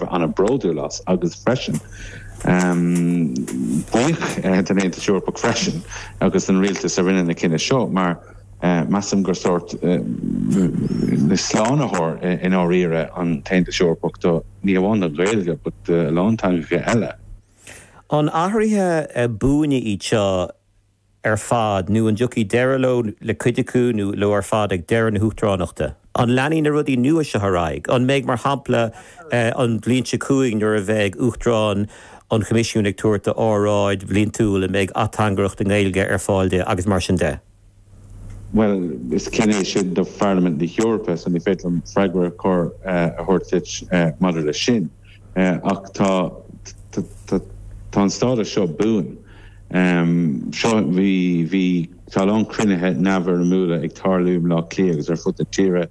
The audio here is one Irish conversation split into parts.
an-bhródúil as. Agus freisin, buíoch den Aontas Eorpach freisin agus den rialtas a rinne an cinneadh seo, mar measaim gur sórt slánaitheoir i ndáiríre an tAontas Eorpach do, ní hamháin don Ghaeilge, but do a lán teangacha eile. An athruithe buana iad seo? ar fad, nó an dtiocfaidh deireadh leo, le cuid acu, nó leo ar fad, ag deireadh na huachtaránachta? An leanfaidh na rudaí nua seo ar aghaidh? An mbeidh, mar shampla, an bhliain seo chugainn, nuair a bheidh Uachtarán an Choimisiúin ag tabhairt a óráid bhliantúil, an mbeidh ateangaireacht i nGaeilge ar fáil di, agus mar sin de? Bhuel, is cinneadh é sin do Pharlaimint na hEorpa, so ní féidir liom freagra cóir a thabhairt duit maidir leis sin. ach tá tá an stádas seo buan. So bhí, tá a lán cruinnithe neamhfhoirmiúla ag tarlú i mBleá Cliath agus ar fud na tíre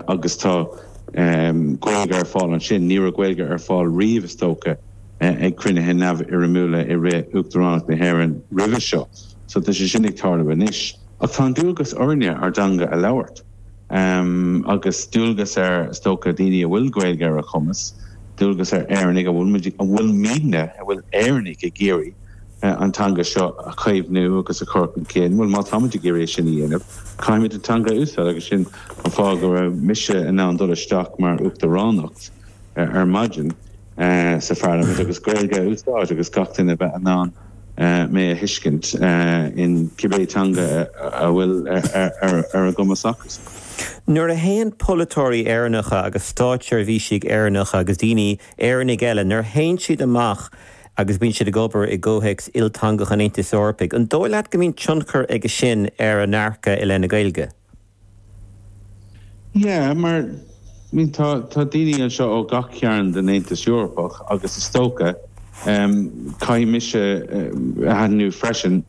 agus tá Gaeilge ar fáil ansin. Ní raibh Gaeilge ar fáil riamh is dócha ag cruinnithe neamhfhoirmiúla i rith Uachtaránacht na hÉireann roimhe seo. So tá sé sin ag tarlú anois. Ach tá an dualgas orainne ár dteanga a labhairt. agus dualgas ar, is dócha, daoine a bhfuil Gaeilge ar a gcumas, dualgas ar Éireannaigh, an bhfuil muidne, an bhfuil Éireannaigh ag iarraidh an teanga seo a chaomhnú agus a chur chun cinn? Bhuel, má táimid ag iarraidh é sin a dhéanamh, caithfimid an teanga a úsáid, agus sin an fáth go raibh mise in ann dul isteach mar Uachtaránacht ar maidin. sa Pharlaimint agus Gaeilge a úsáid agus gach duine a bheith in ann mé a thuiscint in cibé teanga a bhfuil ar a gcumas acusan. Nuair a théann polaiteoirí Éireannacha agus stáitseirbhísigh Éireannacha agus daoine, Éireannaigh eile, nuair a théann siad amach agus bíonn siad ag obair i gcomhthéacs ilteangach an Aontais Eorpaigh, an dóigh leat go mbíonn tionchar aige sin ar a ndearcadh i leith na Gaeilge? Yeah, mar, I mean, tá, tá daoine anseo ó gach cearn den Aontas Eorpach agus is dócha, em, caithfidh mise, eh, a aithniú freisin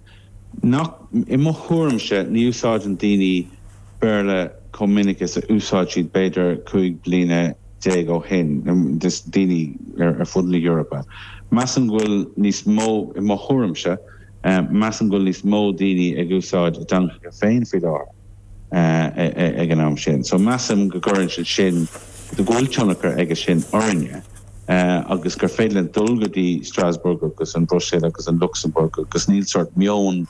nach, i mo thuairimse, ní úsáideann daoine Béarla chomh minic is a úsáid siad b'fhéidir cúig bliana déag ó shin, em, just daoine ar, ar fud na hEorpa. Measaim go bhfuil níos mó, i mo thuairimse, Measaim go bhfuil níos mó daoine ag úsáid a dteangacha féin faoi láthair ag an am sin, so measaim go gcuireann sé sin, go bhfuil tionchar aige sin orainne agus gur féidir linn dul go dtí Strasbourg agus an Bhruiséil agus an Lucsamburg agus níl sórt meon,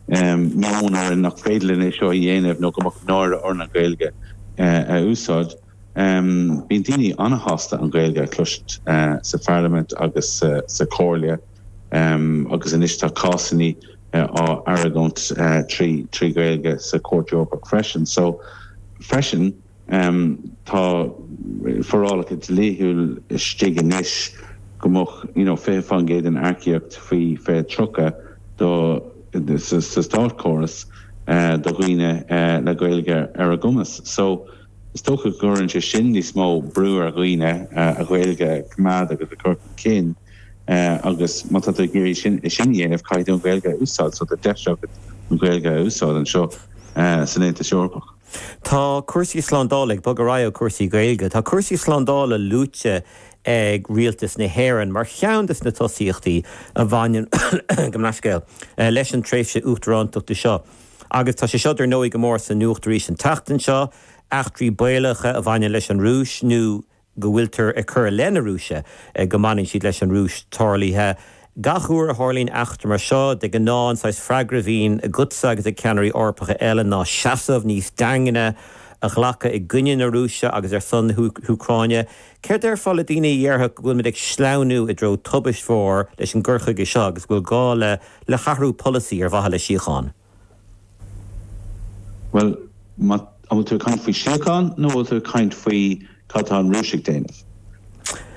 meon orainn nach féidir linn é seo a dhéanamh nó go mbeadh náire orainn an Ghaeilge a úsáid. Bíonn daoine an-shásta an Ghaeilge a chloisint sa Pharlaimint agus sa Chomhairle agus anois tá cásanna á argóint trí Ghaeilge sa Chúirt Eorpach freisin. So freisin tá forálacha dlíthiúil istigh anois go mbeadh you know 20% den earcaíocht faoi faoi 2030 do sa státchóras do dhaoine le Gaeilge ar a gcumas. So. Is dócha go gcuireann sé sin níos mó brú ar dhaoine a Ghaeilge a choimeád agus a chur chun cinn agus má tá tú ag iarraidh sin a dhéanamh caithfidh tú an Ghaeilge a úsáid so tá deis agat an Ghaeilge a úsáid anseo san Aontas Eorpach. Tá cúrsaí slándála ag bogadh ar aghaidh ó chúrsaí Gaeilge. Tá cúrsaí slándála luaite ag Rialtas na hÉireann mar cheann de na tosaíochtaí a bhaineann, gabh mo leithscéal, leis an tréimhse Uachtarántachta seo. Agus tá sé seo dar ndóigh go mór sa nuacht arís an tseachtain seo, eachtraí baolacha a bhaineann leis an Rúis, nó go bhfuiltear ag cur i leith na Rúise go mbaineann siad leis an Rúis, tarlaithe. Gach uair a tharlaíonn eachtra mar seo, de ghnáth an saghas freagra a bhíonn agatsa agus ag ceannairí Eorpacha eile ná seasamh níos daingne a ghlacadh i gcoinne na Rúise agus ar son na hÚcráine. Céard a déarfá le daoine a dhéarfadh go bhfuil muid ag sleamhnú i dtreo tubaiste mhór leis an gcur chuige seo agus go bhfuil gá le le hathrú polasaí ar mhaithe le síocháin? Bhuel, an bhfuil tú ag caint faoi síocháin nó an bhfuil tú ag caint faoi cad tá an Rúis ag déanamh,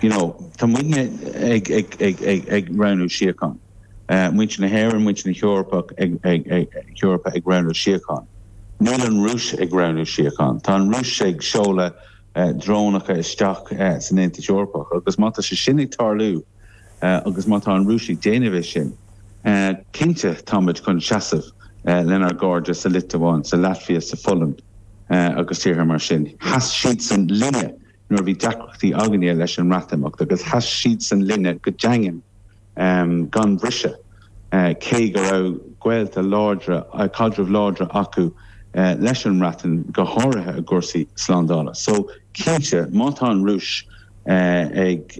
you know, tá muidne ag ag ag ag ag roghnú síocháin. Muintir na hÉireann, muintir na hEorpa ag ag ag hEorpa ag roghnú síocháin. Níl an Rúis ag roghnú síocháin. Tá an Rúis ag seoladh. drónacha isteach san Aontas Eorpach agus má tá sé sin ag tarlú agus má tá an Rúis ag déanamh é sin, cinnte táimid chun seasamh lenár gcairde sa Liotuáin, sa Laitvia, sa Pholainn agus tíortha mar sin. Sheas siadsan linne nuair a bhí deacrachtaí againne leis an mBreatimeacht agus sheas siadsan linne go daingean gan bhriseadh, cé go raibh gaolta láidre, caidrimh láidre acu leis an mBreatain, go háirithe i gcúrsaí slándála. So, cinnte, má tá an Rúis ag.